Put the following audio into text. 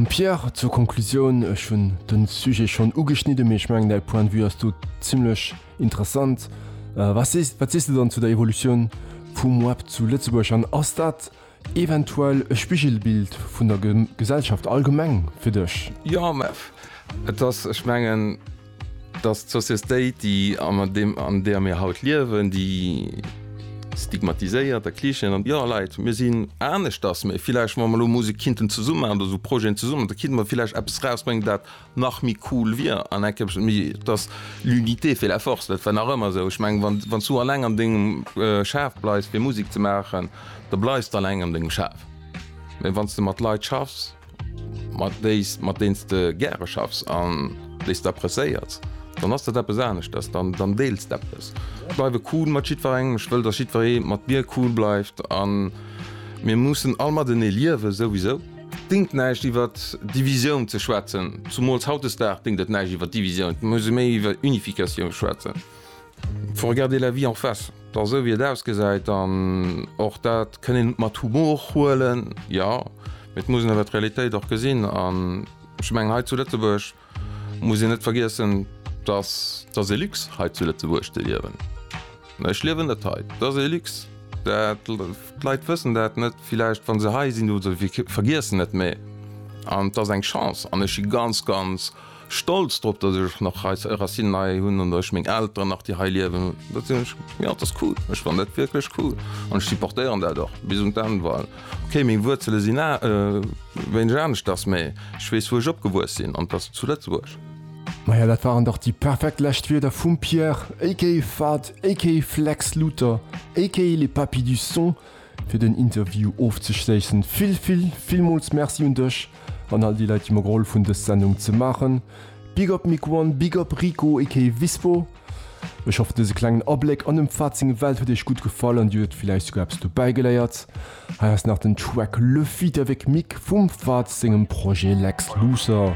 Pierre, zur Konklusioun, ech hunn de Sujet schonn ugeschnidde mee ech mengen däi Point de vue ass do zimmlech interessant. Wat sees wat sees de dann zu der Evolutioun vum Web zu Lëtzebuerg an ass dat eventuell e Spigelbild vun der Gesellschaft allgemeng fir dech? JMF, Et ass, ech mengen, Dass d'Sociestéit, déi an där mir haut liewen, déi stigmatiséiert a Klischeeën an, jo Leit, mir sinn aneschters, mee villäicht wa mer elo Musek kinnten zesumme maachen oder esou Projeten zesumme maachen, da kinnte mer villäicht eppes rausbréngen, dat nach méi cool wier an enk eppes méi, dass l'unité fait la force, dat war nach ëmmer esou. Ech mengen, wann s du alleng an dengem Schaf bleifs fir Musek ze maachen, da bleifs de alleng an dengem Schaf, mee wann s de mat Leit schaffs, mat déis, mat deens de gäre schaffs an déis d'apprecéiers, dann ass dat eppes aneschters, dann, dann deels d'eppes. Ech bleiwe cool mat jiddwerengem, ech wëll, datt jiddweree mat mir cool bleift a mir mussen all matenee liewen, souwisou. Dingt näischt iwwer Divisioun ze schwätzen, zumools hautdesdag dingt et näischt iwwer Divisioun, et muss ee méi iwwer Unificatioun schwätzen, Faut regarder la vie en face, da sou wéi et ausgesäit, an och dat kënn een mat Humor huelen, jo, mee et muss een awer d'Realitéit och gesinn. An ech mengen, hei zu Lëtzebuerg muss een net vergiessen, dass dass ee Luxe hei zu Lëtzebuerg ze liewen. Ech liewen net hei, et ass ee Luxe, dat d'Leit wëssen dat net villäicht wa se hei sinn, oder se vergiessen et, mee an et ass eng Chance an ech si ganz ganz Stolz drop dass ech nach hei Racinen hei hunn an dass meng Elteren nach déi hei liewen. Dat sinn ech jo, dat ass cool. Ech fannen dat wierklech cool an ech supportéieren dat och bis un d'Enn. Well okay, meng Wuerzele sinn wéineg aneschters, mee ech weess wou ech opgewuess sinn an dat ass zu Lëtzebuerg. Maja dat waren dach déi perfekt lescht Wierder vum Pierre aka Fahd aka Flex Luther aka les Papy du Son. fir den Interview ofzeschléissen. Vill, vill, villmools Merci un dech an all déi Leit, déi mer gehollef hunn, dës Sendung ze maachen. Big up Mick One, big up Rico aka Vispo. Ech hoffen, dëse klengen Abléck an dem Pfad seng Welt huet iech gutt gefall an dir huet villäicht souguer eppes dobäigeléiert. Hei ass nach den Track Le feat. Avec Mick vum Pfad sengem Projet Lex Luthor.